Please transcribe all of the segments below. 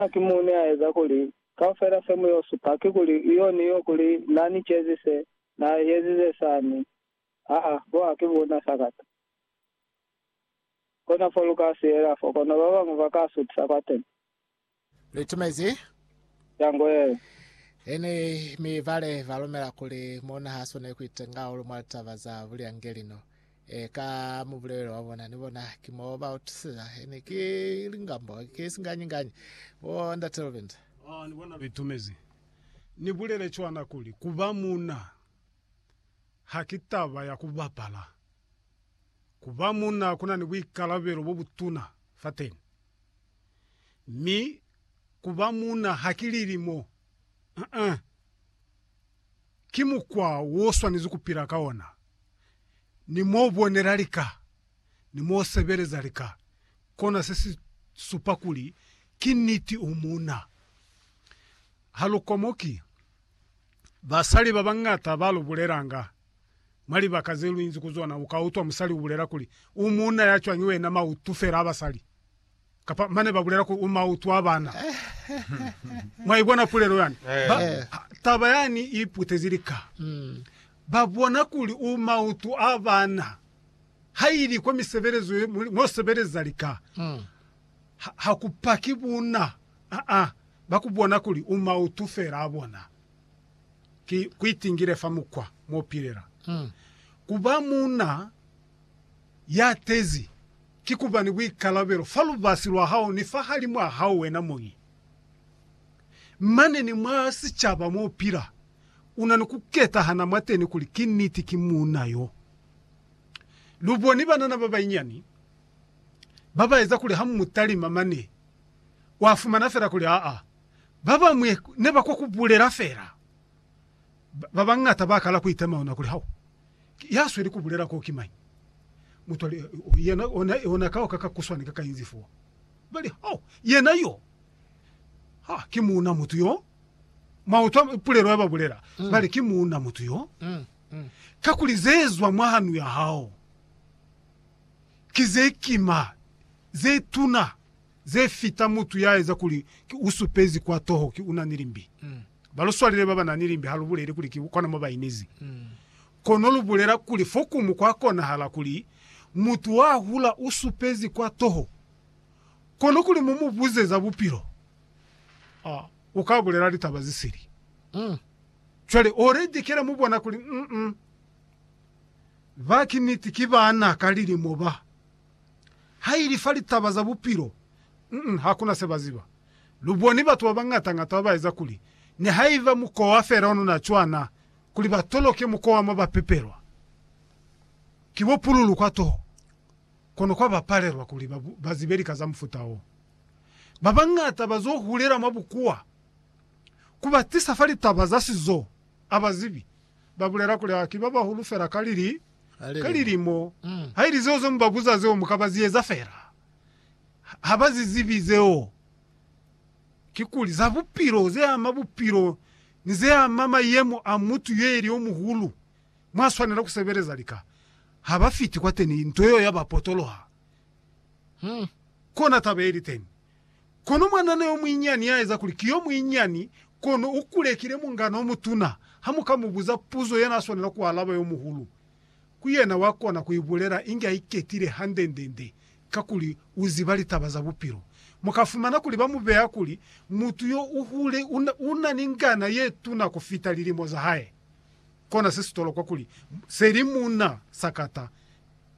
Ha ki muni a eza kuli kaufela se mu yo supa ki kuli iyo ni yo kuli na ni cezi se, na ezize sani? Aa, bo ha ki bona sakata. Kona fo lu ka siyela fo, kono ba bañwi ba ka sutisa kwateni. Lu itumezi? Ya ngo yeo. Ini, mi bale ba lumela kuli mona ha swaneli ku itenga hahulu mwa litaba za bulyangelino. Eh, ka mubulelo wa bona, ni bona, ki mo ba utusisa. Ene ki lingambo, ki singanyi-nganyi. Bo Ndate Robinson. Ah, ni bona, bitumezi. Ni bulele cwana kuli, kuba muna ha ki taba ya ku bapala. Kuba muna kuna ni buikalabelo bo butuna fateni. Mi kuba muna ha ki lilimo. Uh-uh. ki mukwa wo swanezi ku pila ka ona, ni mo bonela lika, ni mo sebeleza lika, kona se si supa kuli ki niti u muuna. Ha lu komoki basali ba bañata ba lu bulelanga. Mwa libaka ze lu inzi ku zona, u ka utwa musali u bulela kuli, U muuna ya cwañi wena, mautu fela a basali! Kapa mane ba bulela kuli u mautu a bana. Mwa ibona pulelo yani? Ba, taba yani i putezi lika. Ba bona kuli u mautu a bana. Ha ili kwa misebelezo ye, mwo sebeleza lika, ha, ha ku paki buna. A-a. Ba ku bona kuli u mautu fela a bona. Ki, ku itingile fa mukwa mwo pilela. Ku ba muna. Ya tezi, ki kuba ni buikalabelo fa lubasi lwa hao ni fahalimw'a hao wena muñi. Mane ni mwa sicaba mo u pila, u na ni ku ketahana mwateni kuli ki niti ki muuna yo. Lu boni banana ba banyinyani ba ba eza kuli ha mu mu talima mane, wa fumana fela kuli aa, ba bañwi ne ba kwa ku bulela fela. Babañata bakala kuitema ona kuli, Hao ki yasweli kubulela ko ki mañi? Mutwale yena ona kao ka ka kuswani ka kainzi fo. Bali, Hao, yena yo. Ha ki muuna mutu yo. Mwautwa pulelo ya babulela? Bali, Ki muuna mutu yo. Kakuli zezwa mwa hanu ya hao ki zekima, zetuna. ze fita mutu ya eza kuli ki u supezi kwa toho ki u na ni limbi. Ba lu swalile ba ba na ni limbi ha lu buleli kuli ki kona mo ba inezi. Kono lu bulela kuli fokumu kwa konahala kuli mutu wa hula u supezi kwa toho, kono kuli mu mu buze za bupilo, u ka bulela litaba ze sili. Cwale o redekela mu bona kuli, Ba ki niti ki bana ka lilimo ba. Haili fa litaba za bupilo, mm, hakuna se ba ziba. Lu boni batu ba bañata-ñata ba ba eza kuli, nihaiba mukowa fela ono na cwana, kuli ba toloke mukowa mo ba pepelwa. Ki bo pululu kwa toho, kono kwa ba palelwa kuli ba, ba zibe lika za mufuta wo. Ba bañata ba zo hulela mwa bukuwa. Ku ba tisa fa litaba za sizo, a ba zibi. Ba bulela kuli, Ah, ki ba bahulu fela ka lili. ka lilimo, haili zeo ze mu ba buza zeo mu ka ba zi eza fela. Ha ba zi zibi zeo. Kikuli, za bupilo, ze ama bupilo ni ze ama mayemo a mutu yo ili yo muhulu mwa swanela ku sebeleza lika. Ha ba fiti kwateni, nto yeo ya ba potoloha. Kona taba ye li teni. Kono mwanana yomuinyiani yaeza kuli ki yomuinyiani kono ukulekile mungana omutuna. Hamuka mubuza puzo yenaaswanela kualaba yomuhulu, ku yena wakona kuibulela inge aiketile hande-nde-nde kakuli uziba litaba za bupilo. Mukafumana kuli bamubeya kuli mutu yo uhule unani ngana yetuna kufita lilimo zahae. Kona sesitolokwa kuli seli muna sakata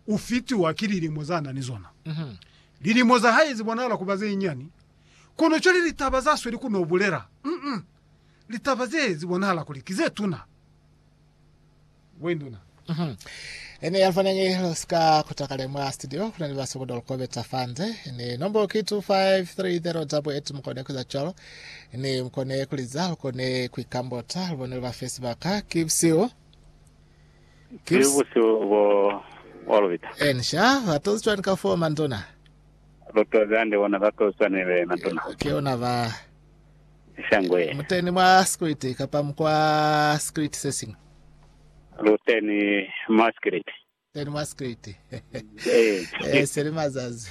U fitiwa ki lilimo za na ni zona. Lilimo za hae zi bonahala ku ba ze nyani, kono cwale litaba za sweli ku n'o bulela, mm, litaba ze zi bonahala kuli ki ze tuna. Wenduna. Ene ya fanengi lu si ka kuta kale mwa studio, ku na ni ba sokodo lu kobeta fa nze. Ni nombo ki 25308, mu kone ku eza cwalo. Ni mu kone ku liza, lu kone ku ikambota, lu bone lu ba fe sibaka. Ki busihu. Ki busihu bo bwa lubita. N sha ba tozi cwani ka foo, Mantuna? Lu tozi hande bona ba tozi cwani be, Mantuna? Ki ona ba. Shangwe. Mu teni mwa sikiliti kapa mu kwa sikiliti se siñwi? Lu teni mwa sikiliti. Teni mwa sikiliti. Ee, se li mazazi.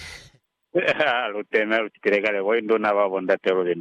Lu teni, lu citile kale bo induna ba bo ndate lubinda.